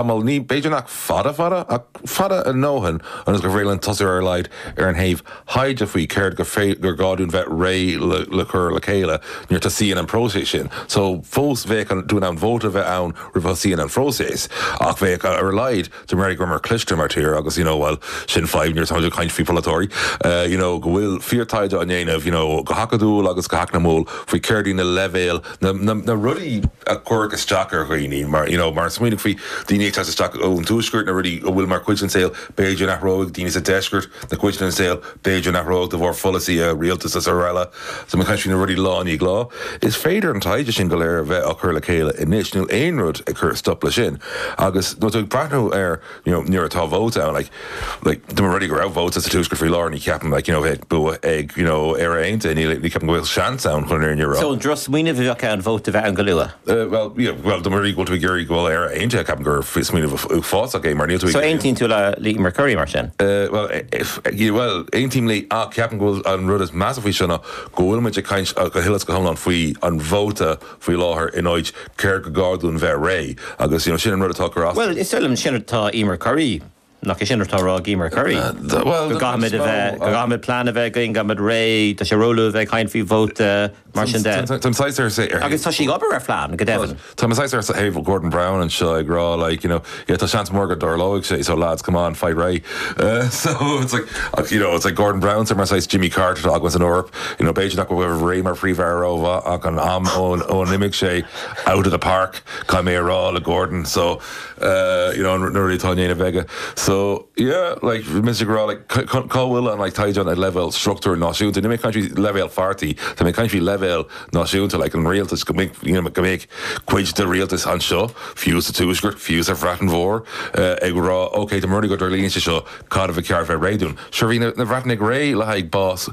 Tamall ní b'fhéidir nach fada fada, ach fada a ndóthain ionas gur féidir linn tosú ar a laghad ar an thaobh thaighde faoi céard gur gá dúinn bheith réidh le cur le chéile nuair a tosaíonn an próiseas sin. So fós bheadh dúinn ann vóta bheith ann roimh a thosaíonn an phróiseas, ach bheadh ar a laghad dá mba rud é go rabhamar cliste mar tír agus you know bhuel sin fadhb nuair atáimid ag caint faoi pholaiteoirí you know go bhfuil fíor taighde á ndéanamh you know go hacadúil agus go heacnamúil faoi céard iad na leibhéil na rudaí a chuirfeadh isteach ar dhaoine, mar, you know, mar smaoinigh faoi daoine ag teacht isteach ón tuaisceart, na rudaí a bhfuil mar chuid den saol, b'fhéidir a n-athróidh daoine sa deisceart, na cuid den saol, b'fhéidir a n-athróidh de bharr pholasaithe rialtais is araile. So mar chuid de na rudaí lá i ndiaidh lá. Is féidir an taighde sin go léir a bheith á chur le chéile anois níl aon rud ag cur stop le sin agus nuair atá tú ag breathnú ar You know, nuair atá vóta ann, like, like, dá mba rud é go raibh vóta sa Tuaisceart faoi láthair, ní cheapaim, like, you know, a bheith ag bua ag, you know, Éire Aontaithe, ní, ní cheapaim go bhfuil seans ann chun an fhírinne a rá. So, drochsmaoineamh a bheadh ann vóta a bheith ann go luath? Eh, bhuel, yeah, bhuel, dá mba rud é go bhfuil tú ag iarraidh go bhfuil Éire Aontaithe, ceapaim gur smaoineamh uafásach é, mar níl tú ag So, iarraidh. aontaíonn tú le Emer Currie mar sin? Eh, bhuel, eh, bhuel, aontaím léi, ach ceapaim go bhfuil an rud is measa faoi seo ná go bhfuil muid ag caint, go huile is go hiomlán faoi an vóta faoi láthair in áit céard go gá dúinn bheith réidh agus you know sin an rud atá ag cur as. Bhuel, is dóigh liom, sin atá Emer Currie, nach é sin atá á rá ag Emer Currie? Bhuel, go gcaithfimid a bheith, go gcaithfimid plean a bheith againn, go gcaithfimid réidh, tá sé róluath a bheith ag caint faoi vóta, mar sin de. Táim saghas ar, ar thaobh. Agus tá sí ag obair ar phlean, go deimhin. Táim saghas ar thaobh Gordon Brown anseo ag rá like, you know, yeah tá seans mór go dtarlóidh sé so lads come on faigh réidh uh so it's like ach you know it's like Gordon Brown so mar saghas Jimmy Carter atá againn san Eoraip you know b'fhéidir nach raibh mar Phríomh-Aire rómhaith ach an am ón ó n-imigh sé out of the park caithfidh mé a rá le Gordon so uh you know na rudaí atá á ndéanamh aige so yeah like mise ag rá like cá bhfuil an like taighde ag leibhéal struchtúr náisiúnta, níl mé ag caint faoi leibhéal pháirtí, tá mé ag caint faoi leibhéal náisiúnta like an rialtas go mbeidh you know go mbeidh cuid de rialtas anseo, fiú sa Tuaisceart, fiú sa Bhreatain Mhór, ag rá, OK, dá mba rud é go dtarlaíonn sé seo, cad ba cheart bheith réidh dúinn? Sure, bhí na Breatnaigh réidh le haghaidh bás,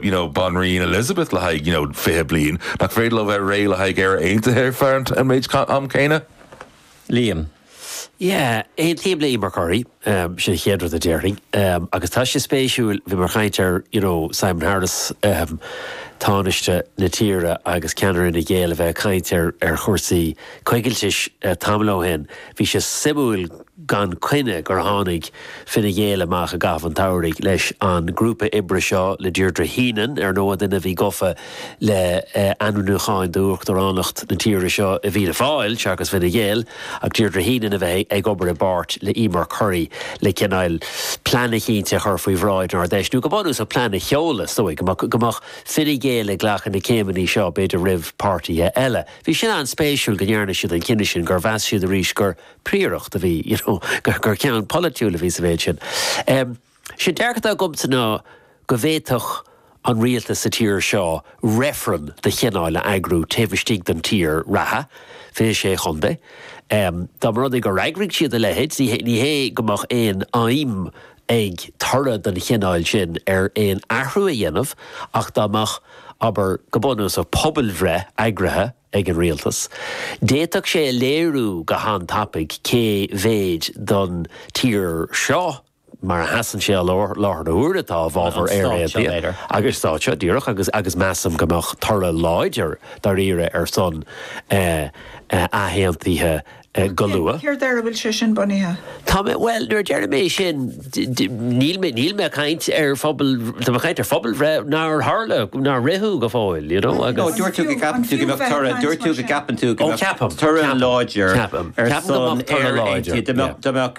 you know, banríon Elizabeth le haghaidh, you know, fiche bliain. Nach féidir leo bheith réidh le haghaidh Éire Aontaithe ar feadh an méid am céanna? Liam, Yeah, aontaím le Emer Currie, sin an chéad rud a déarfainn. Agus tá sé spéisiúil, bhíomar ag caint ar, you know, Simon Harris, Tánaiste na tíre agus ceannaire Fhine Gael a bheith ag caint ar ar chúrsaí coigiltis tamall ó shin. Bhí sé suimiúil gan coinne gur tháinig Fine Gael amach i gcaitheamh an tsamhraidh leis an grúpa oibre seo le Deirdre Heenan, ar ndóigh, duine a bhí gafa, le ainmniúcháin d'Uachtaránacht na tíre seo i bhFianna Fáil, seachas Fine Gael, ach Deirdre Heenan a bheith ag obair i bpáirt le Emer Currie le cineál plean eicínt a chur faoi bhráid an Ard-Fheis, nó go bunúsach plean a sheoladh, is dóigh go mbeadh Fine Gael ag glacadh na céimeanna seo, b'fhéidir roimh páirtithe eile. Bhí sin an-spéisiúil go ndearna siad an cinneadh sin, gur mheas siad arís gur príoracht a bhí, you know, gur ceann polaitiúil a bhí sa mhéid sin. Is é an dearcadh atá agamsa ná go bhféadfadh an rialtas sa tír seo reifreann de chineál a eagrú taobh istigh den tír reatha, 26 chontae. Dá mba rud é gur eagraigh siad a leithéid, ní hé go mbeadh aon fheidhm ag toradh den chineál sin ar aon athrú a dhéanamh, ach dá mbeadh, abair, go bunúsach, pobalbhreith eagraithe ag an rialtas, d'fhéadfadh sé a léiriú go han-tapaidh cé mhéid den tír seo, mar a sheasann sé i láthair na huaire atá i bhfabhar Éire aontaithe agus stáit seo, díreach, agus measaim go mbeadh toradh láidir dáiríre ar son athaontaithe go luath. Céard ar a bhfuil sé sin bunaithe? Tá mé, bhuel, nuair a déarfaidh mé sin, níl mé, níl mé ag caint ar phobal, tá mé ag caint ar phobalbhreith nár tharla, nár ritheadh go fóill, you know, agus. Nó dúirt tú go gceapann tú go mbeadh toradh, dúirt tú go gceapann tú go mbeadh toradh láidir ar son Éire aontaithe, go mbeadh, go mbeadh,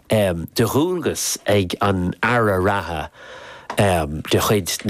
de dhualgas ag an Aire reatha de chuid na.